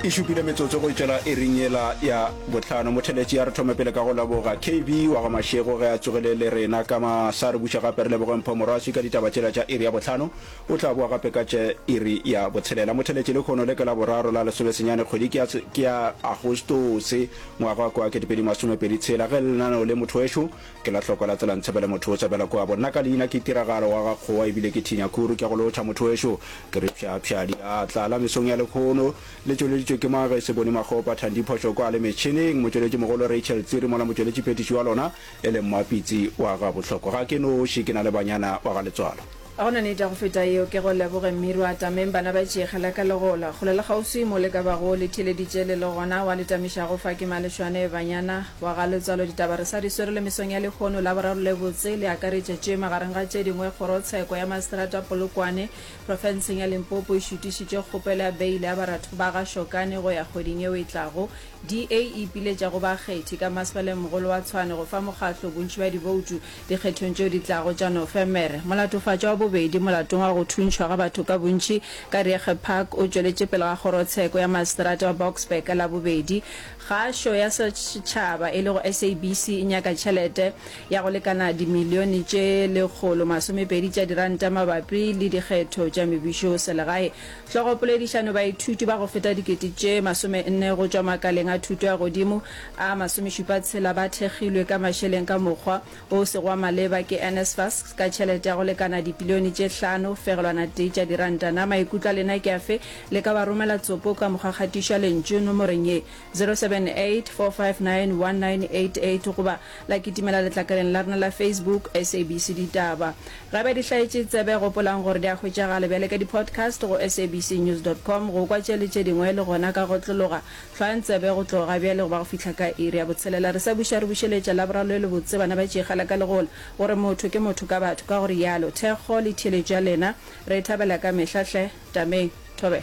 e šupile metsotso go tšwela e reng yela ya botlhano motheletši ya re thome pele ka go leboga kb wa ga mašego ge a tsogele le rena ka ma sa re buša gape re leboge mpho morwasi ka ditaba tšela tša iri ya botlhano o tla boa gape ka tše iri ya botshelela motheletši le kgono le ke la boraro la lesomesenyane kgwedi ke ya agostose ngwaga wa kwa ketepedi masomepedi tshela ge lenaneo le motho wešo Ke la hloko la tsela ntshebele motho o sebela kua bo nna ka leina ke tiragalo wa ga kgowa ebile ke thinya kuru ke go lotšha motho wexo ke re psha psha diatla la mesong ya lekhono le tšweleditšwe ke mang ge se bone makgopa thandi phošo kwa le metšhineng motšweletši mogolo rachel tsiri mola motšweletši phetiši wa lona e leng mmapitsi wa ga bohloko ga ke noši ke na le banyana ba ga letswalo A go na nete ya go feta yeo? Ke go leboge, mme ru atameng, bana ba tšeege la ka le gola. Kgole le kgauswi mo le ka bago le theeleditše le le gona, wa le tamišago fa ke malešwane, banyana, wa ga letswalo. Ditaba re sa di swere le mesong ya lehono. La boraro le botse, le akaretša tše, magareng ga tše dingwe, Kgorotsheko ya Maseterata Polokwane, profenseng ya Limpopo, e šutišitše kgopelo ya beile ya baratho ba ga Shokane go ya kgweding yeo e tlago. DA e ipiletša go bakgethi ka Masepaleng mogolo wa Tshwane go fa mokgatlo bontši bja diboutu. Dikgethong tšeo di tlago tša Nofemere, molatofatšwa wa bobedi molatong wa go thuntšhwa ga batho ka bontši ka Riege Park o tšweletše pele ga kgorotsheko ya maseterata wa Boksburg ka Labobedi. Kgašo ya setšhaba e lego SABC e nyaka tšhelete ya go lekana dimilione tše lekgolo masomepedi tša diranta mabapi le dikgetho tša mebušoselegae. Hlogopoledišano Baithuti ba go feta dikete tše masomenne go tšwa makaleng a thuto ya godimo a masomešupatshela ba thekgilwe ka mašeleng ka mokgwa o sego wa maleba ke NSFAS ka tšhelete ya go lekana dipilione tše hlano fegelwana tee tša diranta. Na maikutlo a lena ke afe? Le ka ba romela tsopo ka mokgwa kgatišo ya lentšu nomoreng ye. 0784591988 goba la kitimela letlakaleng la rena la Facebook SABC Ditaba. Ge ba di hlaetše tsebe, gopolang gore di a hwetšagala bjale ka di-podcast go sabcnews.com. Go kwa tše le tše dingwe le gona ka go otlologa. Hlwang tsebe go tloga bjale go ba go fihla ka iri ya botshelela. Re sa buša re bušeletša Laboraro le lebotse, bana ba tšeegela ka legola gore motho ke motho ka batho. Ka go rialo, thekgo le theeletšo ya lena re e thabela ka mehla hle. Tameng. Thobela.